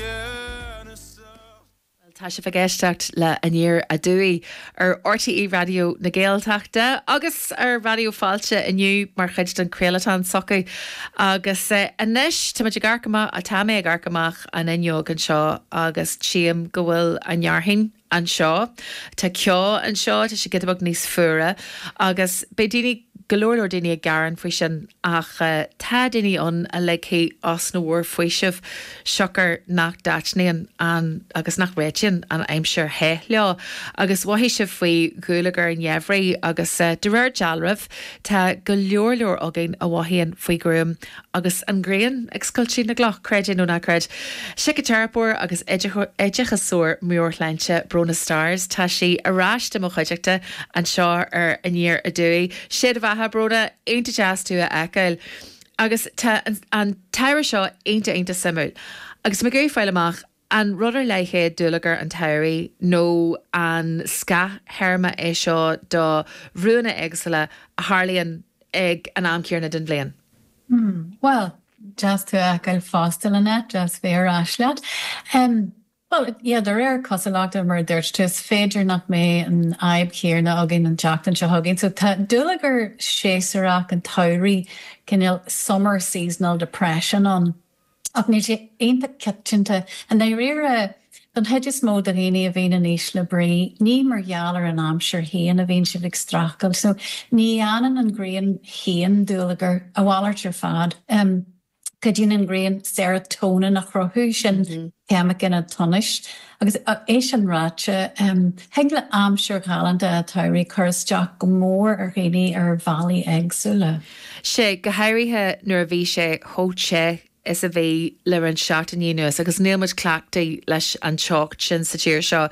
Bhuel, tá sibh ag éisteacht le Aniar Aduaidh ar RTÉ Raidió na Gaeltachta agus ar Raidió Fáilte inniu mar chuid den chraolachán s'acu. Agus anois, tá muid ag amharc amach, tá mé ag amharc amach an fhuinneog anseo agus tchím go bhfuil an fhearthainn, anseo. Tá ceo anseo, tá sé giota beag níos fuaire. Agus beidh daoine, go leor leor daoine ag gearán faoi sin ach tá daoine ann a ligfidh osna mhór faoisimh siocair nach dtaitníonn an, agus nach réitíonn an aimsir the leo. Agus mhothaigh sibh faoi dhúlagar an gheimhridh agus de réir dealraimh tá go leor leor againn a mhothaíonn faoi ghruaim Agus an ghrian ag scoilteadh na gcloch, creid é nó ná creid, síciteiripeoir agus oideachasóir meabhairshláinte, Bronagh Starrs, tá sí ar ais i mo chuideachta anseo ar Aniar Aduaidh. Sé do bheatha, Bronagh. Iontach deas tú a fheiceáil. Agus tá an t-ábhar seo iontach, iontach suimiúil. Agus mé ag iarraidh fáil amach An rud ar leith é dúlagar an tsamhraidh nó an scáth-théarma é seo do bhrúanna éagsúla a tharlaíonn ag an am céanna den bhliain? Hm, bhuel, deas tú a fheiceáil fosta, Lynette, deas bheith ar ais leat. Em, bhuel, yeah, de réir cosúlachta, mar a dúirt tú, is féidir nach mbeidh an fhadhb chéanna againn an tseachtain seo chugainn. So, tá dúlagar séasúrach an tsamhraidh, cineál summer seasonal depression ann. Ach níl sé iontach coitianta. I ndáiríre, don chuid is mó de dhaoine a bhíonn in ísle brí, ní mar gheall ar an aimsir féin a bhíonn siad ag streachailt. So, ní dhéanann an ghrian féin dúlagar, a mhalairt ar fad. Cuidíonn an ghrian serotonin a chruthú, sin ceimiceán an tsonais. Agus é sin ráite, thig le aimsir ghalánta an tsamhraidh cur isteach go mór ar dhaoine ar bhealaí éagsúla. Sea, go háirithe nuair a bhí sé chomh te is a bhí le roinnt seachtainí anuas agus níl muid cleachtaithe leis an teocht sin sa tír seo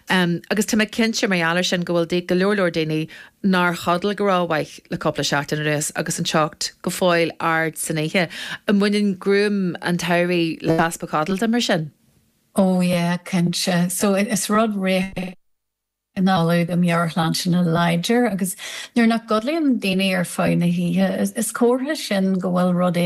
agus tá mé cinnte, mar gheall air sin, go bhfuil go leor leor daoine nár chodail go rómhaith le cúpla seachtain anuas agus an teocht go fóill ard san oíche. An mbaineann gruaim an tsamhraidh le heaspa codlata, mar sin? Oh yeah, cinnte. So, is rud réchúiseach. análú do mheabhairshláinte láidir agus nuair nach gcodlaíonn daoine ar feadh na hoíche, is comhartha sin go bhfuil rud